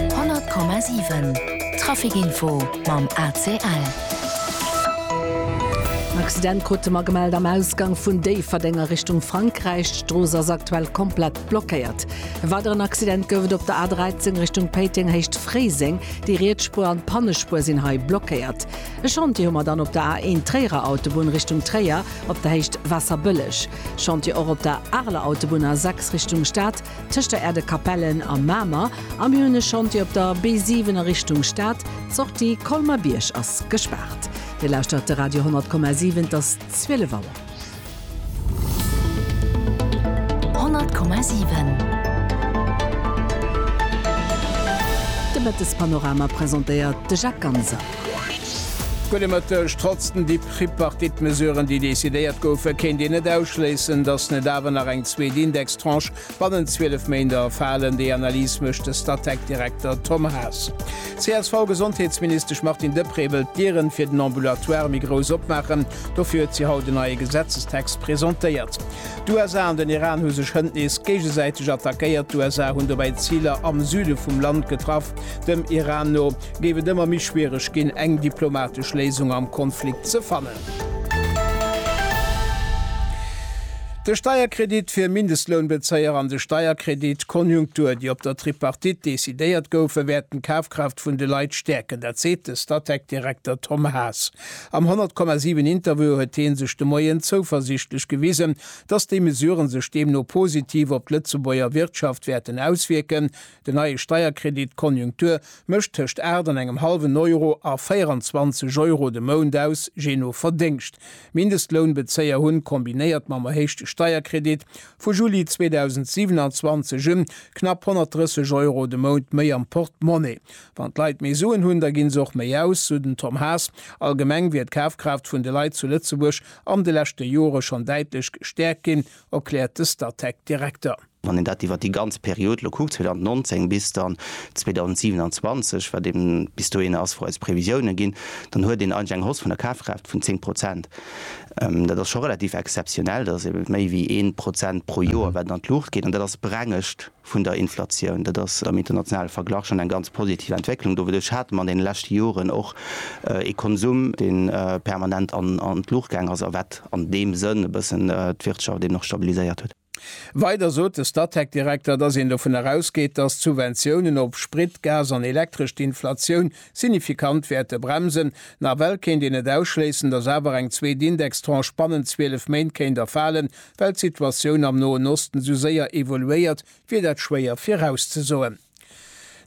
100,7 Traficinfo mam ACL. En Accident krute mer gemellt am Ausgang vun Déifferdeng a Richtung Frankräich. D'Strooss ass aktuell komplett blockéiert. E weideren Accident gouf et op der A13 Richtung Péiteng Héicht Fréiseng. Déi riets Spuer an d'Pannespuer sinn hei blockéiert. E Chantier hu mer dann op der A1 Tréierer Autobunn Richtung Tréier op der Héicht Waasserbëlleg. Chantier och op der Areler Autobunn A6 Richtung Stad. Tëscht der Erdekapellen a Mamer a mir hunn e Chantier op der B7 a Richtung Stad, d'Sortie Colmer-Bierg ass gespaart. Dir lauschtert de Radio 10,7, et ass 12 Auer. 10,7 De Mëttespanorama presentéiert de Jacques Ganser. Gudde Mëtteg. Trotz den Dip Tripartite-Mesuren, déi decidéiert goufen, kéint een net ausschléissen, datt net awer nach eng zweet Indextranche bannent 12 Méinder falen. Déi Analys mécht de Statec-Direkter Tom Haas. D'CSV-Gesondheetsministesch Martine Deprez wëll d'Dieren fir den Ambulatoire méi grouss opmaachen. Dofir huet si haut en neie Gesetzestext presentéiert. D'USA an den Iran hu sech hënt nees géigesäiteg attackéiert. D'USA hunn dobäi Ziler am Süde vum Land getraff. Dem Iran no géif et ëmmer méi schwiereg ginn, eng diplomatesch Léisung am Konflikt ze fannen. De Steierkredit fir Mindestlounbezéier an de Steierkredit Konjunktur, déi op der Tripartite decidéiert goufen, wäerten d'Kafkraaft vun de Leit stäerken. Dat seet de Statec-Direkter Tom Haas. Am 100,7 Interview huet hie sech de Moien zouversiichtlech gewisen, datt déi Mesuren sech deemno positiv op d'Lëtzebuerger Wirtschaft wäerten auswierken, Den neie Steierkredit Konjunktur mécht tëscht 8 an engem hallwen Euro a 24 Euro de Mount aus, jee no Verdéngscht. Mindestlounbezéier hunn, kombinéiert mam erhéichte Steierkredit vu Juli 2027 un, knapp 130 Euro de Mount méi am Portemonnaie. Wann d'Leit méi Suen hunn, da ginn se och méi aus, sou den Tom Haas. Allgemeng wier d'Kafkraaft vun de Leit zu Lëtzebuerg an de leschte Jore schonn däitlech gestäerkt ginn, erkläert de Statec-Direkter. Wann een dat iwwert déi ganz Period elo kuckt, 2019 bis dann 2027, wat eeben bis dohinner ass, wou eis Previsiounen ginn, dann huet een eigentlech eng Hausse vun der Kafkraaft vun zéng Prozent. Dat ass scho relativ exzeptionell. Dat ass eeben méi wéi ee Prozent pro Joer, wat an d'Luucht geet. An dat ass d'Brengescht vun der Inflatioun. Dat ass am internationale Verglach schonn eng ganz positiv Entwécklung. Doduerch hate mer an deene leschte Joren och ee Konsum, dee permanent an d'Luucht gaangen ass a wat an deem Sënn e bëssen d'Wirtschaft eeben och stabiliséiert huet. Weider sot de Statec-Direkter, datt een dovun erausgeet, datt d'Subventiounen op Sprit, Gas an Elektresch d'Inflatioun signifikant wäerte bremsen. Nawell kéint een net ausschléissen, datt awer eng zweet Indextranche bannent 12 Méint kéint erfalen, well d'Situatioun am Noen Osten esou séier evoluéiert, wier dat schwéier virauszesoen.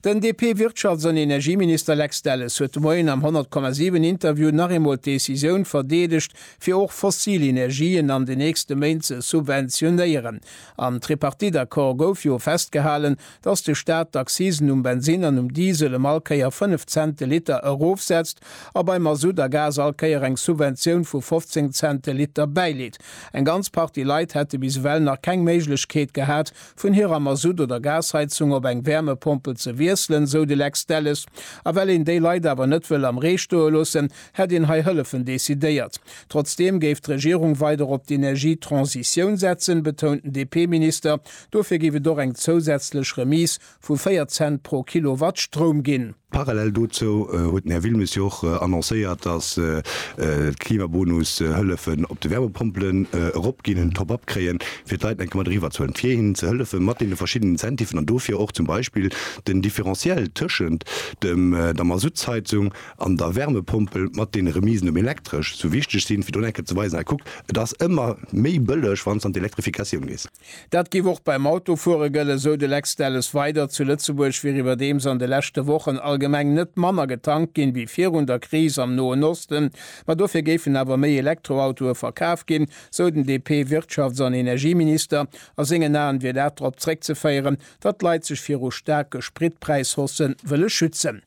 Den DP-Wirtschafts an Energieminister Lex Delles huet de Moien am 100,7 Interview nach eemol d'Decisioun verdeedegt, fir och fossil Energien an den nächste Méint ze subventionéieren. Am Tripartite-Accord gouf jo festgehalen, datt de Staat d'Accisen um Bensinn an um Diesel ëm all Kéier 5 Cent de Liter erofsetzt a bei Masutt a Gas all Kéier eng Subventioun vu 15 Cent de Liter bäileet. Eng ganz Partie Leit hätte bis ewell nach keng Méiglechkeet gehat, vun hirer Masutt oder Gasheizung op eng Wärmepompel ze wiesselen, esou de Lex Delles. A well een déi Leit awer net wëll am Ree stoe loossen, hätt een hei Hëllefen decidéiert. Trotzdeem géif d'Regierung weider op d'Energietransitioun setzen, betount den DP-Minister. Dofir géif et och eng zousätzlech Remise vu 4 Cent pro Kilowatt Stroum ginn. Parallel dozou huet den Här Wilmes jo och annoncéiert, dass d'Klimabonus-Hëllefen op de Wärmepompelen eropginn, en Top-up kréien, fir d'Leit enke mat eriwwerzuen, fir hinnen ze hëllefe mat deene verschiddenen Incentiven an dofir och zum Beispill den Differentiel tëschent der Masuttsheizung an der Wärmepompel mat deene Remisen um Elektresch sou wichteg sinn, fir do enke ze weisen, Kuckt, et ass ëmmer méi bëlleg, wann s an d'Elektrifikatioun gees. Dat géif och beim Autofuere gëllen, esou de Lex Delles weider. Zu Lëtzebuerg wier iwwerdeems an de leschte Wochen allgemeng net manner getankt ginn, wéi virun der Kris am Noen Osten. Ma dofir géifen awer méi Elektroautoe verkaf ginn, sou den DP-Wirtschafts an Energieminister. A sengen Aen wier dat drop zréckzeféieren, datt d'Leit sech viru staarke Spritpräishausse wëlle schützen.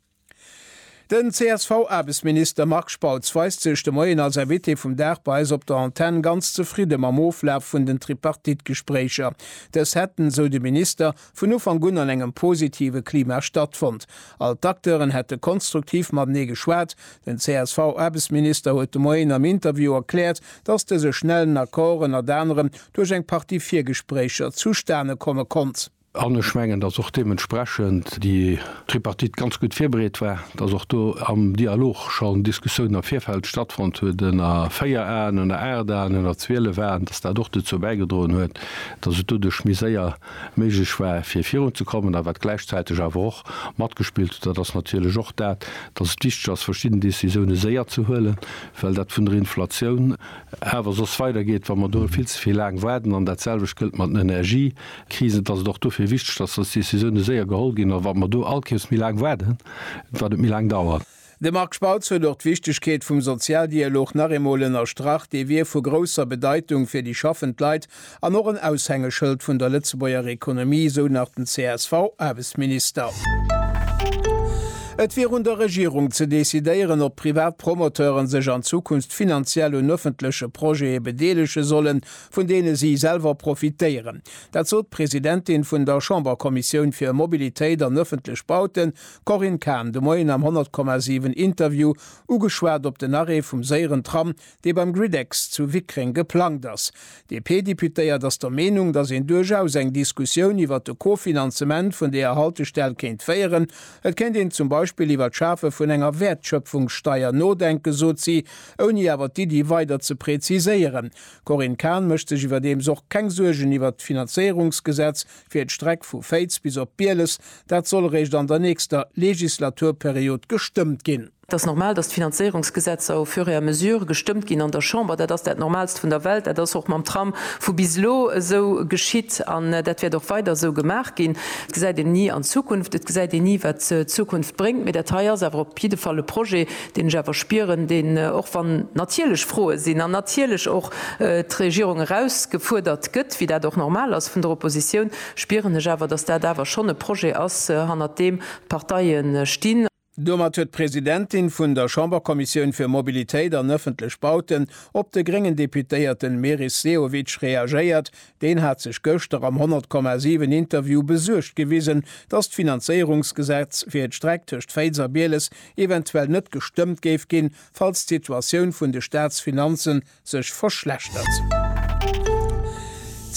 Den CSV-Aarbechtsminister Marc Spautz weist sech de Moien als Invité vum Dag bei eis op der Antenn ganz zefridde mam Oflaf vun den Tripartite-Gespréicher. Dës hätten, sou de Minister, vun Ufank un an engem positive Klima stattfonnt. All d'Acteuren hätte konstruktiv matenee geschwat. Den CSV-Aarbechtsminister huet de Moien am Interview erkläert, datt dëse schnellen Accord ënnert anerem duerch eng Partie Virgespréicher zustane komme konnt. An ech mengen, dass och deementsprechend déi Tripartite ganz gutt virbereet war, dass och do am Dialog schonn Diskussiounen am Virfeld stattfonnt huet, ënner véier Aen, ënner aacht Aen, ënner zwielef Aen, dass dat och dozou bäigedroen huet, dass et doduerch méi séier méiglech war, fir virunzekommen. A wat gläichzäiteg awer och matgespillt huet, dat ass natierlech och dat, dass et wichteg ass, verschidden Décisioune séier ze huelen, well dat vun der Inflatioun awer soss weidergeet, wa mer do vill ze vill laang waarden. An datselwecht gëllt mat den Energië, Krisen, dass et och dofir wichteg ass, dass Decisioune séier geholl ginn a wat mer do allkéiers méi laang waarden, wat et méi laang dauert. De Marc Spautz huet och d'Wichtegkeet vum Sozialdialog nach eemol ënnerstrach. Dee wier vu grousser Bedeitung fir déi schaffend Leit an och en Aushängeschëld vun der Lëtzebuerger Ekonomie, esou nach den CSV-Aarbechtsminister. Et wier un der Regierung ze decidéieren, ob privat Promoteure sech an Zukunft finanziell un ëffentleche Projete bedeelege sollen, vun deene si selwer profitéieren. Dat sot d'Presidentin vun der Chamberkommissioun fir Mobilitéit an ëffentlech Bauten, Corinne Cahen, de Moien am 100,7 Interview, ugeschwat op den Arrêt vum séieren Tram, dee beim Griddex zu Wickreng geplangt ass. D'DP-Deputéiert ass der Meenung, datt een duerchaus eng Diskussioun iwwer de Kofinanzement vun deeër Haltestell kéint féieren. Et kéint een zum Beispill iwwer d'Schafe vun enger Wäertschöpfungssteier nodenken, sot si, ouni awer d'Iddi weider ze präziséieren. D'Corinne Cahen mécht sech iwwerdeems och keng Suergen iwwert d'Finanzéierungsgesetz fir d'Streck vu Féiz bis op Bieles. Dat soll eréischt an der nächster Legislaturperiod gestëmmt ginn. Et ass normal, datt d'Finanzéierungsgesetzer au fur et à mesure gestëmmt ginn an der Chamber. Dat ass dat Normalst vun der Welt. Dat ass och mam Tram vu bis elo esou geschitt an dat wäert och weider esou gemaach ginn. Et gesäit een ni an d'Zukunft, et gesäit een ni, wat d'Zukunft bréngt, mee dat hei ass awer op jidde Fall e Projet, deen ech awer spieren, deen, och wann natierlech Froe sinn an natierlech och d'Regierung erausgefuerdert gëtt, wéi dat och normal ass vun der Opposition, spieren ech awer, dass dat awer schonn e Projet ass, hannert deem d'Parteie stinn. Domat huet d'Presidentin vun der Chamberkommissioun fir Mobilitéit an ëffentlech Bauten op de gréngen Deputéierte Meris Sehovic reagéiert, Deen hat sech gëschter am 100, 7 Interview besuergt gewisen, datt d'Finanzéierungsgesetz fir d'Streck tëscht Féiz a Bieles eventuell net gestëmmt géif ginn, falls d'Situatioun vun de Staatsfinanze sech verschlechtert.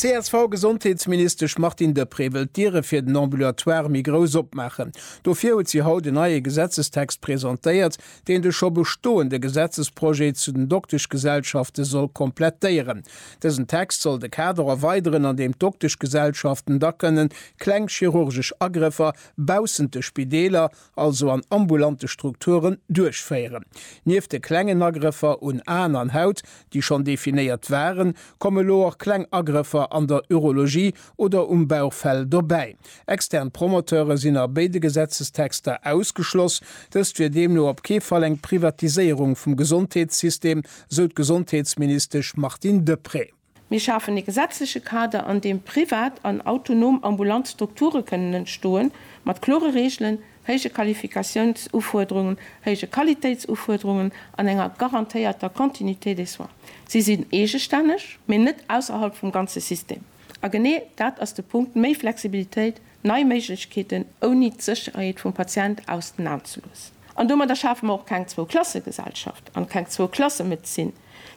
D'CSV-Gesondheetsministesch Martine Deprez wëll d'Diere fir den Ambulatoire méi grouss opmaachen. Dofir huet si haut en neie Gesetzestext presentéiert, deen de scho bestoende Gesetzesprojet zu den Dokteschgesellschafte soll komplettéieren. Dësen Text soll de Kader erweideren, an deem d'Dokteschgesellschaften da kënnen kleng chirurgesch Agrëffer baussent de Spideeler, also an ambulante Strukturen, duerchféieren. Nieft de klengen Agrëffer un Aen an Haut, déi schonn definéiert waren, komme lo och kleng Agrëffer an der Urologie oder um Bauchfell dobäi. Extern Promoteure sinn a béide Gesetzestexter ausgeschloss. Dëst wier deemno op kee Fall eng Privatiséierung vum Gesondheetssystem, sou d'Gesondheetsministesch Martine Deprez. Mir schafen ee gesetzleche Kader, an deem privat an autonom ambulant Strukture kënnen entstoen, mat klore Reegelen, héije Qualifikatiounsufuerderungen, héije Qualitéitsufuerderungen an enger garantéierter Continuité des soins. Si sinn eegestänneg, mee net ausserhalb vum ganze System. A genee dat ass de Punkt, méi Flexibilitéit, nei Méiglechkeeten, ouni d'Sécherheet vum Patient aus den Aen ze loossen. An domadder schafe mer och keng Zwou-Klasse-Gesellschaft an keng Zwou-Klasse-Medezin.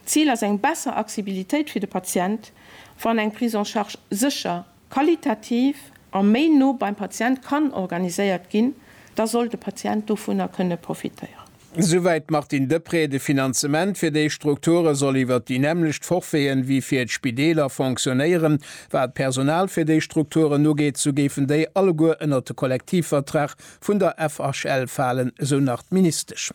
D'Zil ass eng besser Accsibilitéit fir de Patient, wann eng Prise en charge sécher, qualitativ a méi no beim Patient kann organiséiert ginn, da soll de Patient dovunner kënne profitéieren. Esouwäit d'Martine Deprez, De Finanzement fir déi Strukture soll iwwert déi nämmlecht Forfaiten wéi fir d'Spideeler fonctionnéieren. Wat d'Personal fir déi Strukturen ugeet, sou géifen déi alleguer ënnert de Kollektivvertrag vun der FHL falen, esou nach d'Ministesch.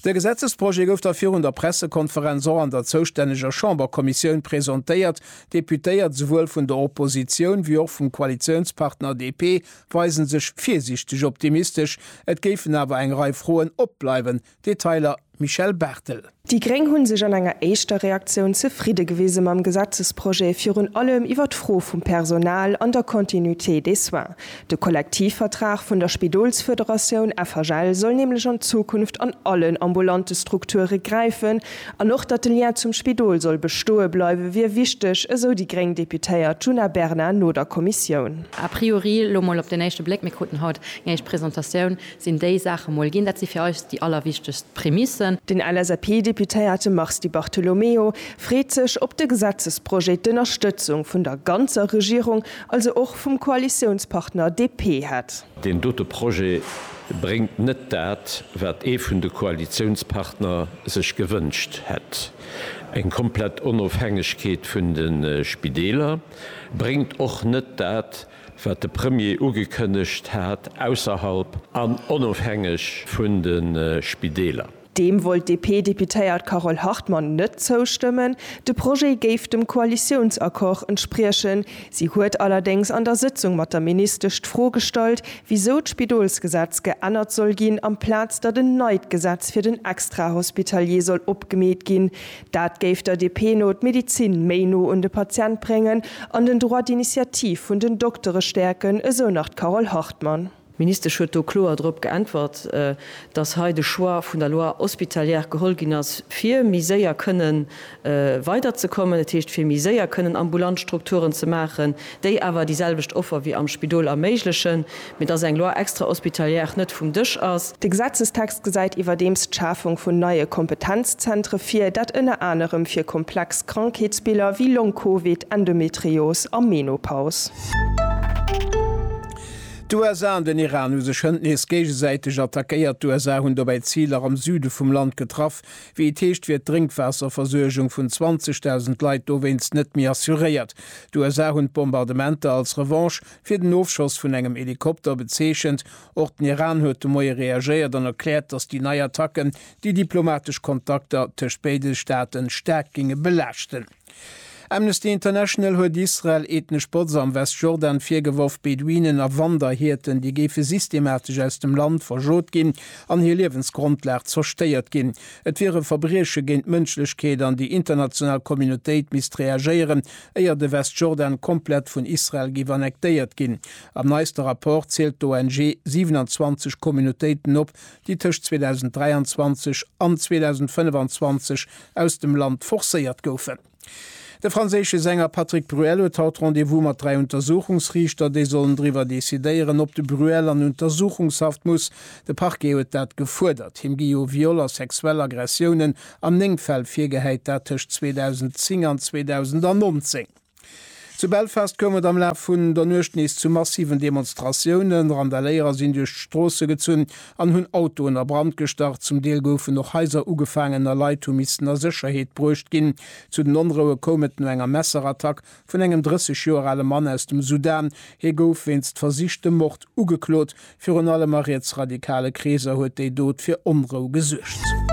De Gesetzesprojet gouf da virun der Pressekonferenz och an der zoustänneger Chamberkommissioun presentéiert. Deputéiert, esouwuel vun der Oppositioun wéi och vum Koalitiounspartner DP, weisen sech virsiichteg optimistesch, et géifen awer eng Rei Froen opbleiwen, Detailer Michèle Barthel. Déi gréng hu sech an enger éischter Reaktioun zefridde gewise mam Gesetzesprojet, virun allem iwwer d'Fro vum Personal an der Continuité des soins. De Kollektivvertrag vun der Spidolsfederatioun FHL soll nämlech an Zukunft an allen ambulante Strukture gräifen, An och datt de Lien zum Spidol soll bestoe bleiwe wier wichteg, esou déi gréng Deputéiert Djuna Bernard no der Kommissioun. A priori, elo mol op den éischte Bléck, mir kruten haut eng éischt Presentatioun, sinn déi Saache mol ginn. Dat si fir eis déi allerwichtegst Prämissen. Den LSAP-Deputéierte Mars Di Bartolomeo freet sech op de Gesetzesprojet d'Ënnerstëtzung vun der ganzer Regierung, also och vum Koalitiounspartner DP hätt. Deen dote Projet bréngt net dat, wat ee vun de Koalitiounspartner sech gewënscht hätt. Eng komplett Onofhängegkeet vun de Spideeler bréngt och net dat, wat de Premier ugekënnegt hat, ausserhalb an onofhängeg vun de Spideeler. Deem wollt d'DP-Deputéiert Carole Hartmann net zoustëmmen. De Projet géif dem Koalitiounsaccord entspriechen. Si huet allerdéngs an der Sëtzung mat der Ministesch d'Fro gestallt, wisou d'Spidolsgesetz geännert soll ginn, amplaz datt en neit Gesetz fir den Extrahospitalier soll opgemeet ginn. Dat géif der DP no d'Medezin méi no un de Patient bréngen an den Droit d'initiative vun den Doktere stäerken, esou nach d'Carole Hartmann. D'Ministesch huet do kloer drop geäntwert, datt hei de Choix vun der Loi hospitalière geholl ginn ass, fir méi séier kënne weiderzekommen, dat heescht fir méi séier kënnen ambulant Strukturen ze maachen, déi awer déi selwecht Offer wéi am Spidol erméiglechen, mee datt eng Loi extra-hospitalière net vum Dësch ass. De Gesetzestext gesäit iwwerdeems d'Schafung vun neie Kompetenzzentre vir, dat ënner anerem fir komplex Krankheetsbiller wéi Long-Covid, Endometrios a Menopaus. D'USA an den Iran hu sech hënt nees géigesäiteg attackéiert. D'USA hunn dobäi Ziler am Süde vum Land getraff. Wéi et heescht, wier d'Drénkwaasserversuergung vun 20.000 Leit dowéinst net méi assuréiert. D'USA hunn d'Bombardementer als Revanche fir den Ofschoss vun engem Helikopter bezeechent. Och den Iran huet de Moie reagéiert an erkläert, datt déi nei Attacken déi diplomatesch Kontakter tëscht béide Staaten staark géinge belaaschten. Amnesty International huet Israel ethnesch Botz am Westjordan virgeworf, Beduinen a Wanderhierten, déi géife systematesch aus dem Land verschot ginn an hir Liewensgrondlag zerstéiert ginn. Et wier e Verbrieche géint d'Mënschlechkeet an déi international Communautéit misst reagéieren, éier de Westjordan komplett vun Israel géif annektéiert ginn. Am neiste Rapport zielt d'ONG 27 Communautéiten op, déi tëscht 2023 an 2025 aus dem Land forcéiert goufen. De franséische Sänger Patrick Bruel huet haut Rendez-vous mat dräi Untersuchungsriichter, déi sollen driwwer decidéieren, ob de Bruel an Untersuchungshaft muss. De Parquet huet dat gefuerdert. Him gi jo Viol a sexuell Aggressiounen an néng Fäll virgehäit, dat tëscht 2010 an 2019. Zu Belfast koum et am Laf vun der Nuecht nees zu massiven Demonstratiounen. Randaléierer sinn duerch d'Stroosse gezunn an hunn Autoen a Brand gestach. Zum Deel goufen och Haiser ugefaangen a Leit hu missen a Sécherheet bruecht ginn. Zu den Onroue koum et no enger Messerattack vun engem 30 Joer ale Mann aus dem Sudan. Hie gouf wéinst versichtem Mord ugeklot, Virun allem a rietsradikale Kreeser huet déi Dot fir Onrou gesuergt.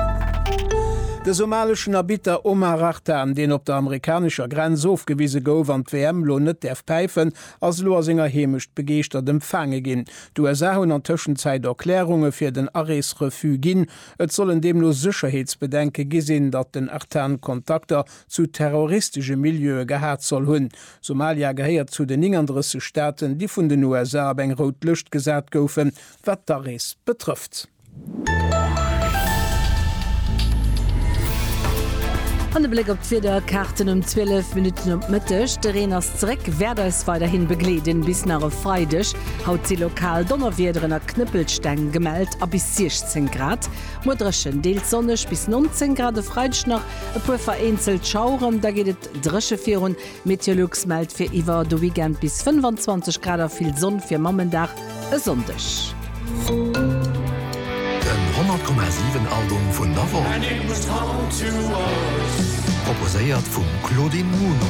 De somaleschen Arbitter Omar Artan, deen op der amerikanescher Grenz ofgewise gouf an d'WM lo net däerf päifen, ass elo a senger Heemecht begeeschtert empfaange ginn. D'USA hunn an Tëschenzäit Erklärunge fir den Arees-Refus ginn. Et sollen deemno Sécherheetsbedenke gi sinn, datt den Artan Kontakter zu terroristesche Milieue gehat soll hunn. Somalia gehéiert zu den 39 Staaten, déi vun den USA op eng rout Lëscht gesat goufen, wat d'Arees betrëfft. An e Bléck op d'Wiederkaarten um 12 Minutten op d'Mëtteg. De Reen ass zeréck, wäert eis weiderhi begleeden bis nach e Freideg. Haut si lokal Donnerwiederen a Knëppelsteng gemellt a bis 16 Grad. Muer dréchen, deels sonneg bis 19 Grad. E Freideg nach e puer vereenzelt Schaueren, da geet et. bleift dréche virun. Meteolux mellt fir iwwer de Weekend bis 25 Grad a vill Sonn fir Mammendag e Sonndeg. Den 100,7 Album vun der Woch, proposéiert vum Claudine Muno.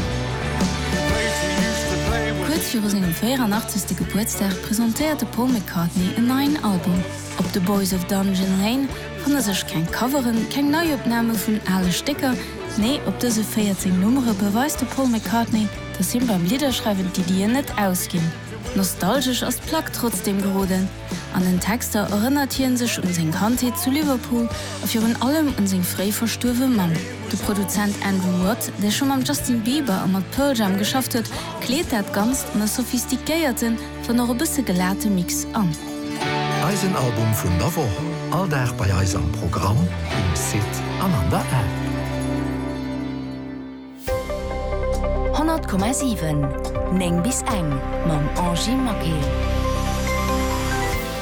Kuerz viru sengem 84. Gebuertsdag presentéiert de Paul McCartney en neien Album. Op The Boys of Dungeon Lane Fanne sech keng Coveren, keng Neiopname vun ale Stécker, nee, op dëse 14 Nummere beweist de Paul McCartney, dass him beim Lidderschreiwen d'Iddien net ausginn. Nostalgesch ass d'Plack trotzdeem geroden. An den Texter erënnert hie sech un seng Kandheet zu Liverpool a virun allem un seng fréi verstuerwe Mamm. De Produzent Andrew Watt, dee scho mam Justin Bieber a mat Pearl Jam geschafft huet, kleet dat Ganzt an e sophistiquéierten, Dann och e bësse gelate Mix an. Eisen Album vun der Woch, all Dag bei eis am Programm, um Site an an der App. 100,7 9 bis eng mam Angy Maquet.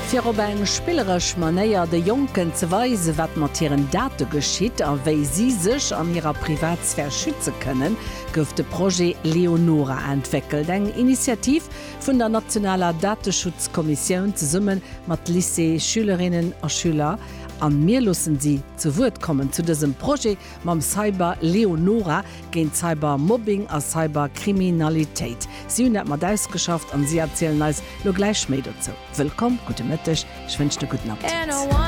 Fir op eng spilleresch Manéier de Jonken ze weisen, wat mat hiren Date geschitt a wéi si sech an hirer Privatsphär schütze kënnen, gouf de Projet Leonora entwéckelt, eng Initiativ, vun der nationaler Dateschutzkommissioun zesumme mat Lycée-Schülerinnen a Schüler an mir loossen si zu Wuert kommen zu dësem Projet mam Cyber Leonora géint Cybermobbing a Cyberkriminalitéit. Si hunn dat mat ausgeschafft an si erzielen eis lo gläich méi dozou. Wëllkomm, gudde Mëtteg, ech wënschen e gudden Appetit.